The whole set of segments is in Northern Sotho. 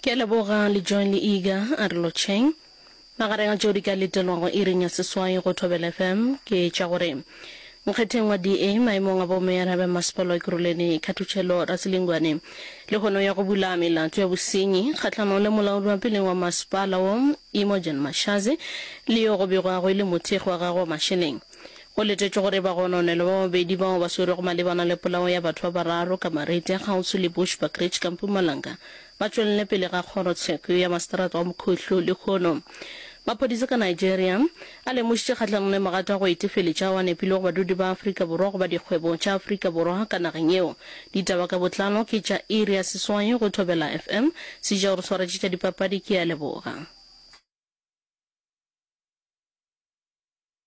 Ke a leboga Lejoin le Iga a re lotšheng. Magareng a tšeo di ka letelwago iring ya seswai go Thobela FM ke tša gore Nkgetheng wa DA, maemong a bomeyara ba Masepala wa Ekurhuleni, Khathutšhelo Raselingwane le hono ya go bula melato ya bosenyi kgahlanong le molaodwapeleng wa masepala wo Imogen Mashazi le yo go begwago e le mothekgi wa gagwe wa mašeleng Go letetšwe gore bagononelwa ba babedi bao ba swerwego malebana le polao ya batho ba bararo ka Marete a kgauswi le Bushbuckridge ka Mpumalanga ba tšwelele pele ga kgoro tsheko ya maseterata wa Mokhohlo lehono. Maphodisa ka Nigeria a lemošitše kgahlanong le magato a go etefeletša ao a nepilego badudi ba Afrika Borwa goba dikgwebo tša Afrika Borwa ka nageng yeo. Ditaba ka botlalo ke tša Iria Seswai go Thobela FM. Se ja o re swaretše tša dipapadi ke a leboga.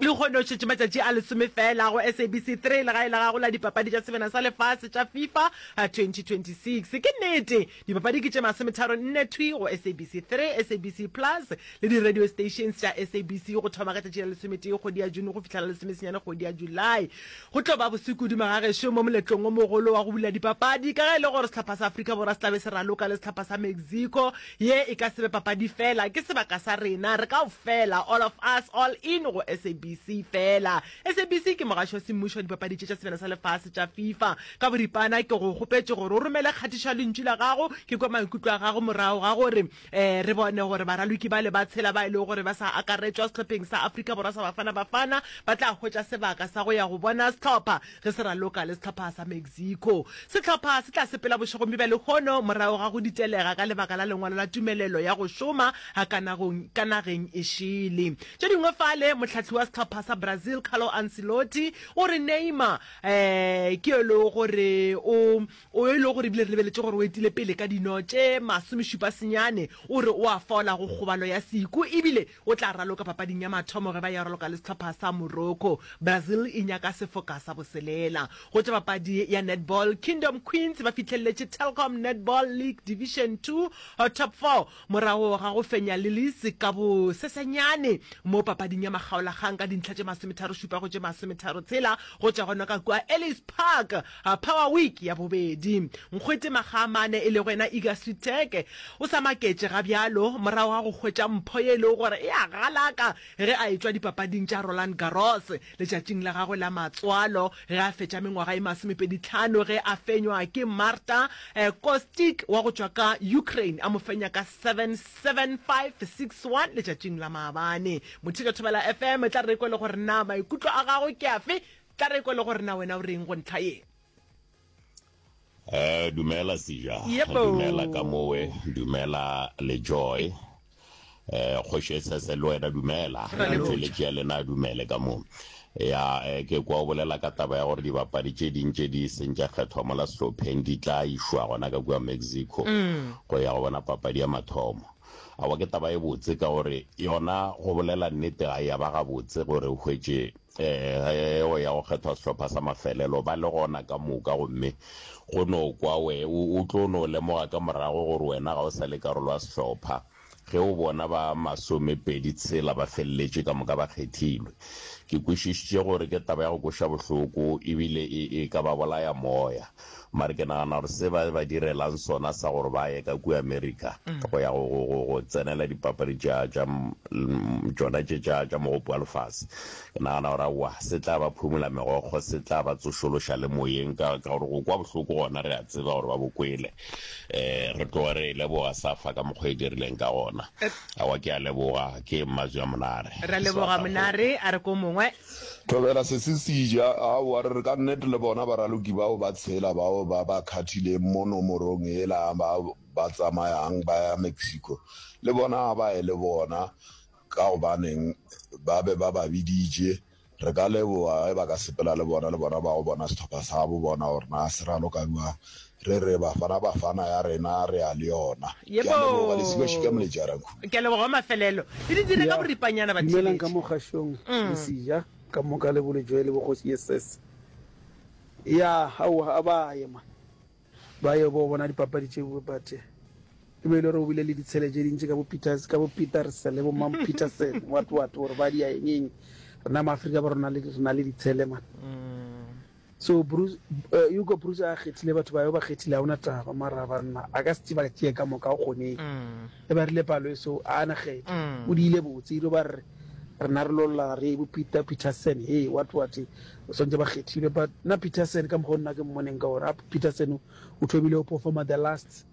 Lehono o šetše matšatši a lesome feela go SABC 3, legae la gago la Dipapadi tša Sebena sa Lefase tša Fifa 2026. Ke nnete, dipapadi ke tše masometharo nne thwi go SABC 3, SABC Plus le di-radio stations tša SABC go thoma ka tšatši la lesometee kgwedi ya June go fihla la lesomesenyane kgwedi ya July. Go tlo ba boso kudu magagešo mo moletlong o mogolo wa go bula dipapadi ka ge e le gore sehlopha sa Afrika Borwa se tla be se raloka le sehlopha sa Mexico Ye e ka se be papadi fela, ke sebaka sa rena re kaofela, all of us, all in go SABC fela. SABC ke mogaši wa semmušo wa dipapadi tše tša sebjana sa lefase tša FIFA. Ka boripana ke go kgopetše gore o romele kgatišo ya lentšu la gago, ke kwe maikutlo a gago morago ga gore um re bone gore baraloki bale ba tshela ba e lego gore ba sa akaretšwa sehlopheng sa Afrika Borwa sa Bafana Bafana ba tla hwetša sebaka sa go ya go bona sehlopha Ge se raloka le sehlopha sa Mexico, sehlopha se tla sepela bošegong bja lehono morago ga go ditelega ka lebaka la lengwalo la tumelelo ya go šoma ka nageng e šele. Tše dingwe fale, mohlahli wa sehlopha sa Brazil Carlo Ancelotti o re Neymar um ke yo e lego gore o o yo e lego gore ebile re lebeletše gore o etile pele ka dino tše masomešupa senyane, o re o a fola go kgobalo ya seku ebile O tla raloka papading ya mathomo ge ba ya raloka le sehlopha sa Morocco. Brazil e nyaka sefoka sa boselela. Go tša papadi ya netball, Kingdom Queens ba fihlelletše Telkom Netball League Division Two Top Four morago ga go fenya Lilies ka bosesenyane mo papading ya makgaolakgang ka dintlha tše masometharo-šupa go tše masometharo-tshela go tšwa gona ka kua Ellis Park Power Week ya bobedi. Nkgwete Makgaamane e lego yena Iga Switheke o sa maketše ga bjalo morago ga go hwetša mpho ye e lego gore e a galaka ge a etšwa dipapading tša Roland Garros letšatšing la gagwe la matswalo ge a fetša mengwaga e masomepeditlhano ge a fenywa ke Marta Kostic wa go tšwa ka Ukraine a mo fenya ka seven, seven, five, six, one letšatšing la maabane. Motheka Thobela FM e tla re e kwele gore na maikutlo a gagwe ke afe Tla re kwe le gore na wena o reng go ntlha ye. Eh, dumela Sija. Yebo. Dumela ka mowe, dumela le Joy. Eh, Kgoši Esese le wena dumela. Ra leboga. Motšweletši ya lena a dumele ka mo. Ya, eh, ke kwa o bolela ka taba ya gore dibapadi tše ding tše di seng tša kgethwa mola sehlopheng di tla išwa gona ka kua Mexico go ya go bona papadi ya mathomo. Aowa ke taba e botse ka gore yona go bolela nnete ga ya ba gabotse gore o hwetše Ee, o ya go kgethwa sehlopha sa mafelelo, ba le gona ka moka, gomme go no kwa we, o, o tlo no lemoga ka morago gore wena ga o sa le karolo ya sehlopha, ge o bona ba masomepedi tshela ba feleletše ka moka ba kgethilwe. Ke kwešišitše gore ke taba ya go kweša bohloko, ebile e, e ka ba bolaya moya. Mare ke nagana gore se ba ba direlang sona sa gore ba ye ka kua America go ya go, go, go, go tsenela dipapadi tša, tša m- l- m- tšona tše tša, tša mogopo wa lefase, ke nagana gore aowa, se tla ba phumula megokgo, se tla ba tsošološa le moyeng, ka, ka gore go kwa bohloko gona re a tseba gore ba bo kwele. Um re tloge re e leboga safa ka mokgwa e dirileng ka gona. Aowa, ke a leboga, ke Mmazwi a Monare. Ra leboga Sebata kgole. Monare a re ko mongwe. Thobela sesisija, aowa, re re ka nnete le bona baraloki bao ba tshela bao ba ba khathileng mo nomorong yela ba ba tsamayang ba ya Mexico, le bona a ba ye le bona, ka gobaneng ba be ba ba biditše. Re ka leboga ge ba ka sepela le bona, le bona ba yo bona sehlopha sabo, bona gore na se raloka bjang. Re re Bafana Bafana ya rena re a le yona. Ke a leboga Lesika Shika Molejara Nkhumbi. Ke a leboga wa mafelelo. E di dire ka boripanyana ba Dumelang ka mo kgašong lesija ka moka le bolejwe le bogoši yeses ya aowa a ba ye man ba yo bo bona dipapadi tše bue but e be e le gore o bile le ditshele tše dintši ka bo Peters ka bo Peterse le bo Mam Peterson what what gore ba dia eng eng rena ma Afrika ba rona le rena le ditshele man. So Bruce, uh, you go Bruce a kgethile batho ba yo ba kgethile ha una taba mara banna a ka se ba tšee ka moka o kgone mm. e ba rile palo eso a na kgetho mm. o diile botse ilo ba re rena re lolla re bo Peter Peterson hey what what o sontse ba kgethile but na Peterson ka mokgwa nna ke mmoneng ka gore Peterson o thomile o performa the last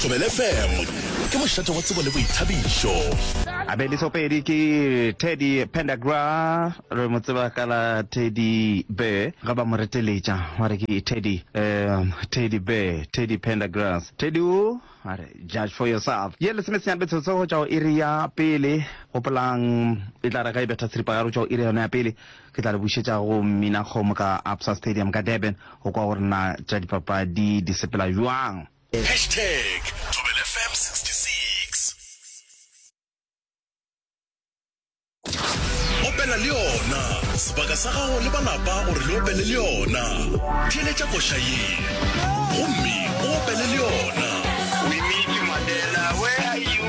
Thobela FM ke mošate wa tsebo le boithabišo. A be disopedi ke Teddy Pendagra re mo tseba ka la Teddy Bear ga ba mo reteletša wa re ke Teddy um, Teddy Bear Teddy Pendagrass Teddy o a re judge for yourself ye lesome senyane betsotso go tšwa go iri ya pele gopolang e tla re ga e betha tshiripagare go tšwa go iri yona ya pele Ke tla le bušetša go Mminakgomo ka Absa Stadium ka Durban go kwa gore na tša dipapadi di sepela bjang. Hashtag Thobela FM 66. Opela le yona, sebaka sa gago le ba lapa gore le opele le yona. Theeletša koša ye gomme o opele le yona. Winnie Madela, where are you?